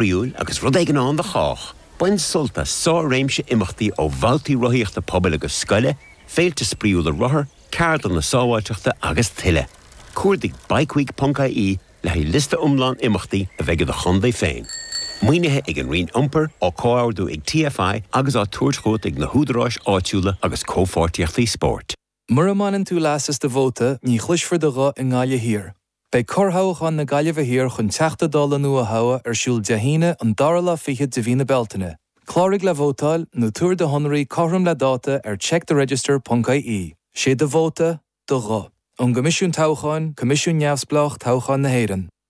spraíúil agus rud éigin ann do chách. Bain sult as sár-réimse imeachtaí ó bhabhtaí rothaíochta pobail agus scoile, féilte spraíúla rothar, ceardlanna sábháilteachta agus tuilleadh. Cuardaigh bikeweek.ie le haghaidh liosta iomlán imeachtaí a bheidh i do chontae féin. Maoinithe ag an Roinn Iompair, á comhordú ag TFI agus á tabhairt chugat ag na húdaráis áitiúla agus comhpháirtíochtaí spóirt. Mura mbaineann tú leas as do vóta, ní chloisfear do ghuth i nGaillimh Thiar. Beidh corrthoghchán na Gaillimhe Thiar chun Teachta Dála nua a thoghadh ar siúl Dé hAoine an dara lá fichead de mhí na Bealtaine. Cláraigh le vótáil, nó tabhair do shonraí cothrom le dáta ar checktheregister.ie. Sé do vóta, do ghuth. Ón gCoimisiún Toghcháin, Coimisiún neamhspleách toghcháin na hÉireann.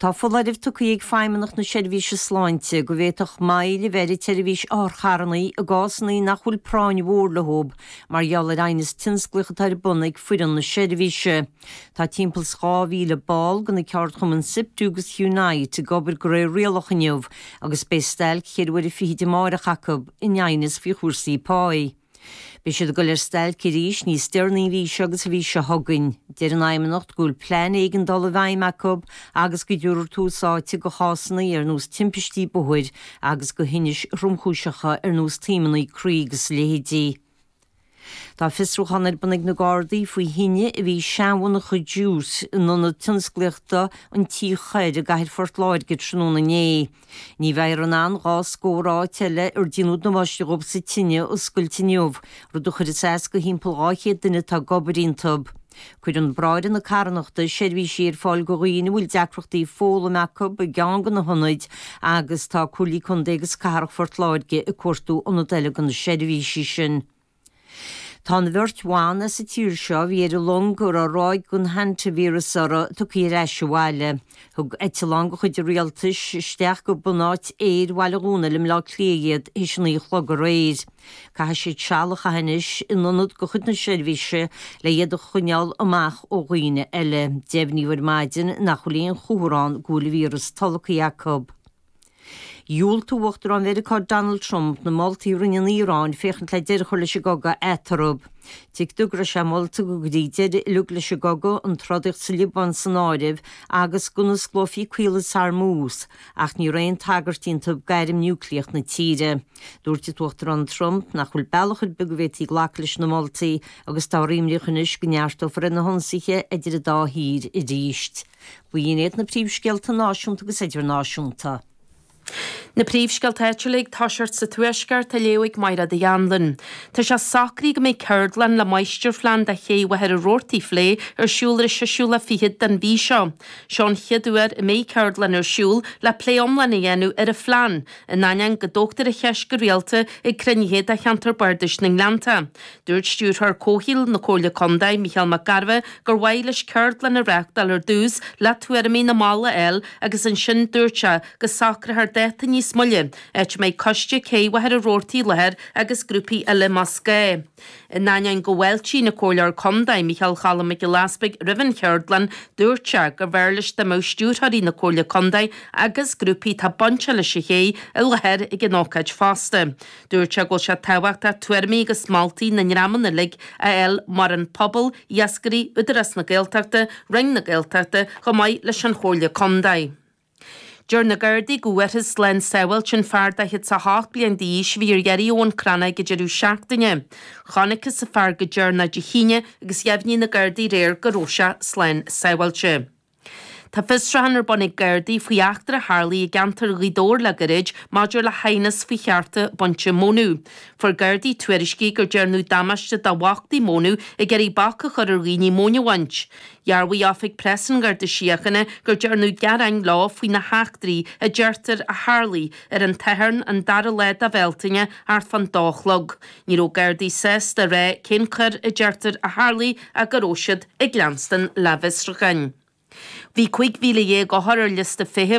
Tá foláireamh tugtha ag Feidhmeannacht na Seirbhíse Sláinte go bhféadfadh moill a bheith ar an tseirbhís otharcharranna i gcásanna nach bhfuil práinn mhór leo mar gheall ar aighneas tionsclaíoch atá ar bun ag foireann na seirbhíse. Tá timpeall is 2,000 ball de na ceardchumainn Siptu agus Unite ag obair de réir rialach inniu agus beidh stailc cheithre huaire fichead amárach acu in aighneas faoi chúrsaí páigh. Beidh siad ag dul ar stailc arís níos deireanaí an mhí seo agus an mhí seo chugainn. Deir an Fheidhmeannacht go bhfuil plean éigeandála i bhfeidhm acu agus go dtabharfar tús áite do chásanna ar nós timpistí bóthair agus do thinnis thromchúiseacha ar nós taomanna croí agus a leithéidí. Tá fiosrúchán ar bun ag na Gardaí faoi thine a bhí i seanmhonarcha Jute in Ionad Tionsclaíochta an Tí Choirr i gcathair Phort Láirge tráthnóna inné. Ní bheifear in ann dhá scór áit eile ar déanadh damáiste dóibh sa tine a oscailt inniu, rud a chuirfeas as do thimpeall 200 duine atá ag obair iontu. Cuireann Bráithre na Carthanachta seirbhísí ar fáil do dhaoine a bhfuil deacrachtaí foghlaim acu i gceann de na hionaid agus tá Comhairle Contae agus Cathrach Phort Láirge ag cuartú ionad eile do na seirbhísí sin. Tá an bheirt bhan as an tír seo a bhí ar an long a raibh ráig den hanta-víreas uirthi tugtha ar ais abhaile. Thug eitleán de chuid an Rialtais isteach go bunáit aeir Bhaile Dhónaill i mBleá Cliath iad théis a naoi a chlog aréir. Caithfidh siad seal a chaitheamh anois in ionad de chuid na seirbhíse le iad a choinneáil amach ó dhaoine eile. Deimhníodh ar maidin nach bhfuil aon chomhartha ann go bhfuil an víreas tolgtha acu. Dhiúltaigh Uachtarán Mheiriceá Donald Trump na moltaí a rinne an Iaráin féachaint le deireadh a chur leis an gcogadh eatarthu. Tuigtear go raibh sé molta go gcuirfí deireadh uilig leis an gcogadh, an trodaíocht sa Liobáin san áireamh, agus go n-osclófaí Caolas Hormuz, ach ní raibh aon tagairt iontu d'airm núicléacha na tíre. Dúirt an tUachtarán Trump nach bhfuil bealach ar bith go bhféadfaí glacadh leis na moltaí agus táthar imníoch anois go neartófar ar na hionsaithe idir an dá thír arís. B'in iad na príomhscéalta náisiúnta agus idirnáisiúnta. Na príomhscéalta áitiúla ag toiseacht sa Tuaisceart á léamh ag Máire Uí Anluain. Tá sé socraithe go mbeidh ceardlann le máistirphlean de ché Mhachaire Rabhartaigh a phlé ar siúl ar an 26ú lá den mhí seo. Seo an chéad uair a mbeidh ceardlann ar siúl le plé iomlán a dhéanamh ar an phlean, in ainneoin go dtógtar an cheist go rialta ag cruinnithe de Cheantar Bardais na nGleannta. Dúirt Stiúrthóir Comhshaoil na Comhairle Contae, Mícheál Mac Gairbheith, gur mhaith leis ceardlann a reachtáil ar dtús le tuairimí na mball a fháil agus ansin dúirt sé go socrófar dáta níos moille, áit a mbeidh coiste Cé Mhachaire Rabhartaigh i láthair agus grúpaí eile más gá. In ainneoin go bhfáiltíonn an Comhairleoir Contae, Mícheál Cholm Mac Giolla Easbuig roimh an cheardlann, dúirt sé gurbh fhearr leis dá mbeadh Stiúrthóirí na Comhairle Contae agus grúpaí atá bainteach leis an ché i láthair ag an ócáid fosta. Dúirt sé go bhfuil sé tábhachtach tuairimí agus moltaí na ndreamanna uilig a fháil mar an pobal, iascairí, Údarás na Gaeltachta, Roinn na Gaeltachta, chomh maith leis an Chomhairle Contae. Deir na Gardaí go bhfuarthas slán sábháilte an fear 48 bliain d'aois a bhí ar iarraidh ó Bhun Cranncha ag deireadh seachtaine. Chonacthas an fear go deireanach Dé hAoine agus dheimhnigh na Gardaí aréir go raibh sé slán sábháilte. Tá fiosrúcháin ar bun ag Gardaí faoi eachtra a tharlaigh i gceantar Ghaoth Dobhair le gairid maidir le haighneas faoi chearta bainte mónadh. Fuair Gardaí tuairiscí gur dearnadh damáiste do bhachtaí mónadh ag iarraidh bac a chur ar dhaoine móin a bhaint. Dhearbhaigh Oifig Preas an Gharda Síochána gur dearnadh gearáin leo faoi na heachtraí a deirtear a tharlaigh ar an tSatharn an dara lá de Bhealtaine thart fán dó a chlog. Ní raibh gardaí sásta a rá cén choir a deirtear a tharlaigh ach go raibh siad ag leanstan lena bhfiosrúcháin. Bhí 15,000 othar ar liosta feithimh